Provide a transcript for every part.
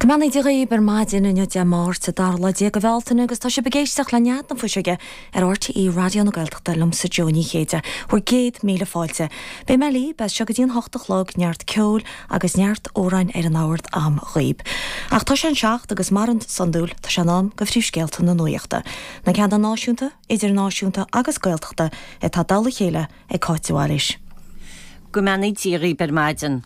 Go mbeannaí Dia dhaoib ar maidin inniu Dé Máirt, a dara lá déag de Bhealtaine agus tá sibh ag éisteacht le nead na fuiseoige ar RTÉ Raidió na Gaeltachta liomsa Jó Ní Chéide, bhur gcéad míle fáilte. Beidh mé libh as seo go dtí an hocht a chlog, neart ceoil agus neart amhrán ar na bacáin agam dhaoib. Ach tá sé an seacht agus mar is iondúil tá sé in am do phríomhscéalta na nuaíochta. Na ceannta náisiúnta, idirnáisiúnta agus Gaeltachta atá curtha le chéile ag Cáit de Bhailís. Go mbeannaí Dia dhaoib ar maidin.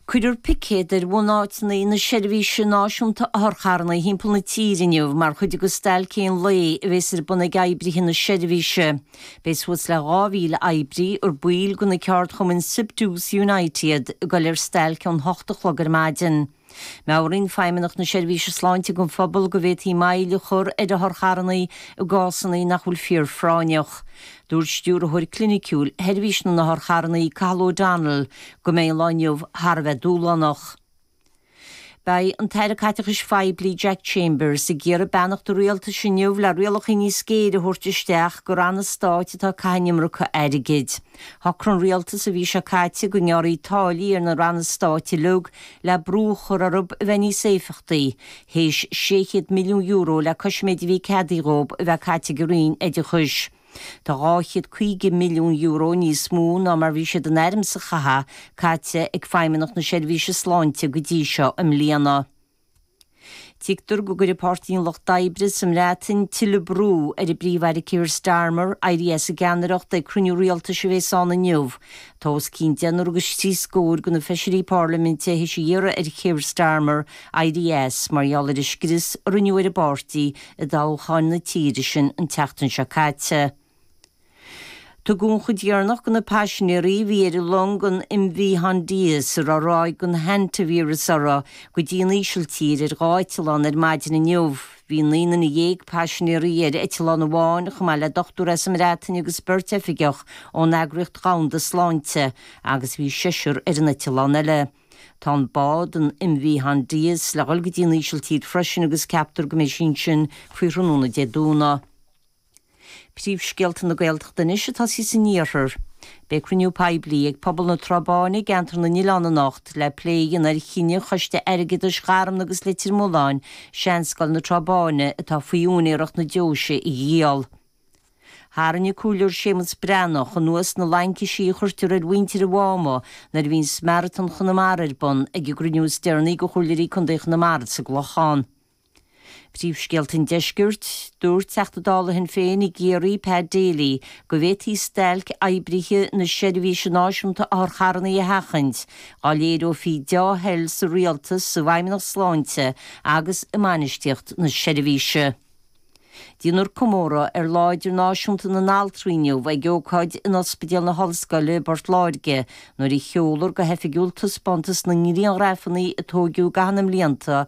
Cuirfear picéad ar bhunáiteanna na Seirbhíse Náisiúnta Otharcharranna timpeall na tíre inniu mar chuid de stailc aon lae a bheas ar bun ag oibrithe na seirbhíse. Beidh suas le 2,000 oibrí, ar baill de na ceardchumainn Siptu 's Unite iad, ag dul ar stailc ón hocht a chlog ar maidin. Meabhraíonn Feidhmeannacht na Seirbhíse Sláinte don phobal go bhféadfaí moill a chur ar otharcharrannaí i gcásanna nach bhfuil fíorphráinneach. Dúirt Stiúrthóir Cliniciúil Sheirbhís na nOtharcharrannaí, Cathal O'Donnell, go mbeidh an lá inniu thar a bheith dúshlánach. Beidh an tAire Caiteachais Phoiblí Jack Chambers ag iarraidh beannacht an rialtais inniu le rialacha níos géire a thabhairt isteach do ranna stáit atá ag caitheadh an iomarca airgid. Shocraigh an rialtas an mhí seo caite go ngearrfaí táillí ar na ranna stáit uilig le brú a chur orthu a bheith níos éifeachtaí, théis €600 milliún le cois an méid a bhí ceadaithe dhóibh a bheith caite ag an Roinn Oideachais. Tá €250 milliún níos mó ná mar bhí siad in ainm is a chaitheamh caite ag Feidhmeannacht na Seirbhíse Sláinte go dtí seo i mbliana. Tuigtear go gcuirfidh Páirtí an Lucht Oibre sa mBreatain tuilleadh brú ar an bPríomh-Aire Keir Starmer éirí as an gceannaireacht ag cruinniú rialtais a bhéas ann inniu. Tá os cionn deichniúr agus trí scór de na feisirí Parlaiminte théis a iarraidh ar Keir Starmer éirí as mar gheall ar an scrios a rinneadh ar an bpáirtí i dtoghcháin na tíre sin an tseachtain seo caite. Tugadh an chuid dheireanach de na paisinéirí a bhí ar an long, an MV Hondius, a raibh ráig den hantavírus uirthi, go dtí an Ísiltír ar dhá eitleán ar maidin inniu. Bhí naoi nduine dhéag paisinéirí ar eitleán amháin, chomh maith le dochtúir as an mBreatain agus beirt oifigeach ón Eagraíocht Dhomhanda Sláinte, agus bhí seisear ar an eitleán eile. Tá an bád, an MV Hondius, le dhul go dtí an Ísiltír freisin agus ceaptar go mbeidh sí ansin faoi thráthnóna Dé Domhnaigh. Príomhscéalta na Gaeltachta anois agus tosóidh san iarthar. Beidh cruinniú poiblí ag pobal na Trá Báine i gCeantar na nOileán anocht le plé a dhéanamh ar chinneadh Choiste Airgeadais Gharmna agus Leitir Mealláin Seanscoil na Trá Báine atá faoi úinéireacht na Deoise a dhíol. Tharraing an comhairleoir Séamus Breathnach anuas na laincisí a chuirtear ar mhuintir an Mháma nuair a bhíonn maratón Chonamara ar bun ag an gcruinniú is deireanaí de Chomhairleoirí Contae Chonamara sa gClochán. Príomhscéalta an Deiscirt, Dúirt Teachta Dála Shinn Féin i gCiarraí Pa Daly go bhféadfaí stailc oibrithe na seirbhíse náisiúnta otharcharranna a sheachaint dá léireofaí deá-thoil sa rialtas, sa bhfeidhmeannacht sláinte agus i mbainistíocht na seirbhíse. Déanfar comóradh ar Lá Idirnáisiúnta na nAltraí inniu ag ócáid in Ospidéal na hOllscoile i bPort Láirge nuair a sheolfar go hoifigiúil taispeántas na ngrianghrafanna a tógadh i gcaitheamh na mblianta